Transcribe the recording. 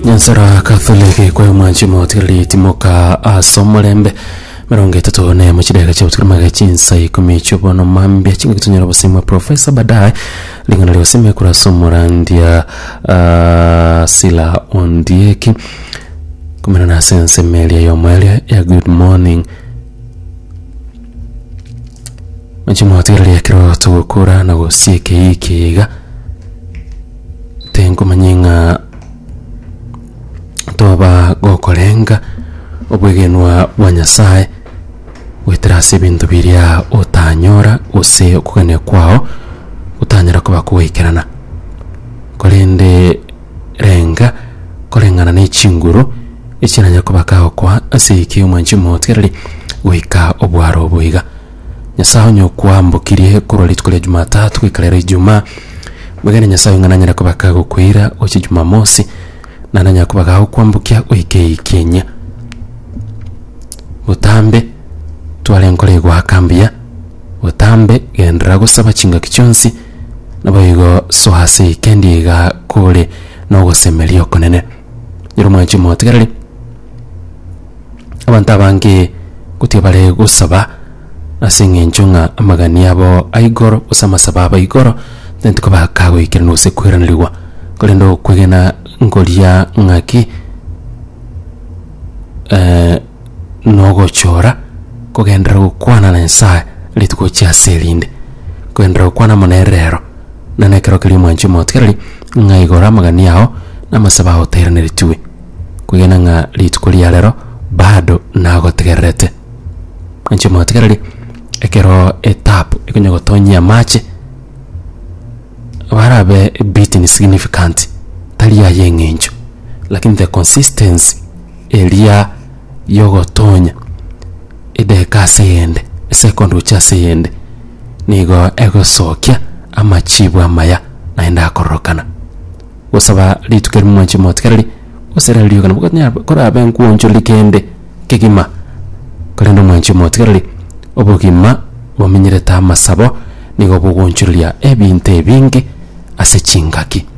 nyansara katholiki kwayo mwanchi motigareri timoka ase omorembe mirongo etato na emo chidega chia gotigara maga chinsa ikomi chiobono mambia chingaki tonyora obosemwa profesa baadaye ring'ana ria gosema ekura ase omorandia ah, sila ondieki kumenana ase ensemo eria yomo eria ya good morning Chimotigereria ekero togokora na gosia ekeyia ekeyia iga tenkomanya ng'a toba gokorenga obwegenwa bwa Nyasaye goetera ase ebinto biria otanyora gose okogania kwao gotanyara koba kogoikerana korende Renga koreng'ana ne chinguru echiranyare kobaka gokwa ase eke omwanchi omotereri goika obwaro obo iga. Nyasae onye okwambokirie korwa rituko ria Jumatatu goika rero Ijumaa, mwegene Nyasae onye nanyare kobaka gokoira gochia Jumamosi, na nanyare kobaka gokwambokia goika eikenyia. Botambe tware enkoro egoaka mbuya, botambe genderera gosaba chingaki chionsi, Naboigo soa ase eikendi iga kore nogosemeria okonene. Nyiri mwanchi motegereri, abanto abange gotiga bare gosaba ase eng'encho ng'a amagani abo a igoro gose amasabo abo a igoro tanti kobaka goikerana gose kweranerigwa, korende okwegena nkoria ng'aki nogochora kogenderera gokwana na Nyasaye rituko chiaase erinde, kogenderera gokwana amo nere rero, na nekero keria omwanche omotigereri, ng'a igora amagania ao na amasabo ao otairaneretigwe, kwegena ng'a rituko ria rero bado nagotegererete. Mwanche omotigereri, ekero etabu ekonya gotonyia amache, barabe a bit insignificant, tari aye eng'encho, lakini the consistency. eria y'ogotonya edeka ase eyende, esekondi gochia ase eyende, nigo egosokia amachibu amaya naende akororokana. Gosaba rituko erimo mwanche motigereri, gose riria riogana gokonyara korabe nkwonchoriri kende kegima, korende mwanche motigereri, obogima bominyorete amasabo nigo bogoonchoreria ebinto ebinge ase chingaki.